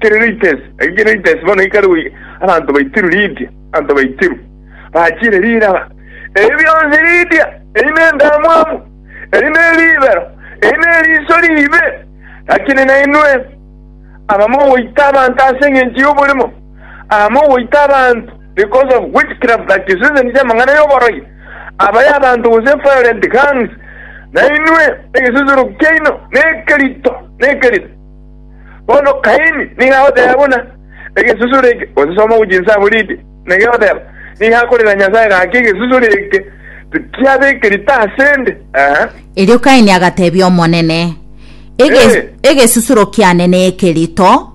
Kireates, eke Kireates bono ekare goika abanto baitiru Lidia, abanto baitiru bachire riraba. Ebi bionsi Lidia, eyi nendamwamu, eyi neribero, eyi neriiso riibe, lakini nainwe aba mogoita abanto ase engencho y'oborimo, aba mogoita abanto because of witchcraft that is reason y'amang'ana y'oborogi, aba y'abanto gose violent gangs, nainwe egesusuro kiaino nekerito, nekerito. Bono Kaini nigo agoteba buna egesusuro eke, gose soma gochia inse amo rinde, na kegoteba, Nigo akorera Nyasae gaki egesusuro eke tikiabekerete ase 'nde. Aha. Erio Kaini agatebia Omonene, Ege, Eh. egesusuro kiane neke rito,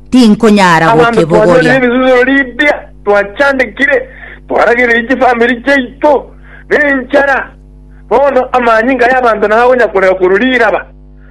tinkonyara Abanto twanyorire gokibogoria. ebisusuro ribia, twachandekire, twaragereire chifamiri chiaito nenchara. Bono amanyinga y'abanto nago akonyakorera korwa riraba.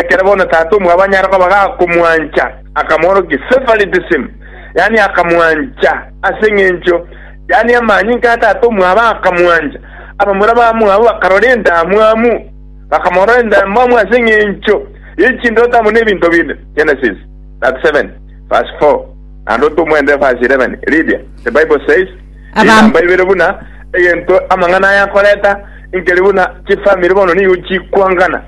Ekero bono tata omwabo anyare koba gakomwancha, akamoorokia, Favoritism, yaani akamwancha ase eng'encho, yaani amanyinga a tata omwabo akamwancha. Abamura bamwabo bakarora endamwamu, bakamorora endamwamu ase eng'encho ye chindoto amo nebinto binde. Genesis 37 verse 4 naende otomwende verse 11. Lydia, The Bible Says, Aba- Chinamba ibere buna egento amang'ana aya akoreta, inkeri buna chifamiri bono nigo chikwangana.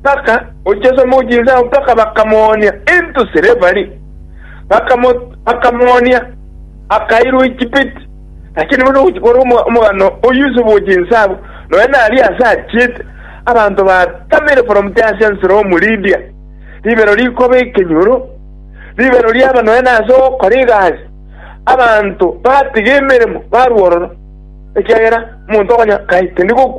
mpaka gochesa omochie ao mpaka bakamoonia into silveri, bakamo bakamoonia akairwa Echipiti. Lakini buna ogochikora omo- omogano o Yusufu o chinsabu, nonya naria ase achiete, abanto batamire from Tarsius from Lydia, ribero rikoba ekenyoro, ribero riaba nonya nase ogokora egasi, abanto batiga emeremo barwa ororo, ekiagera omonto okonya kai tindi gokwa.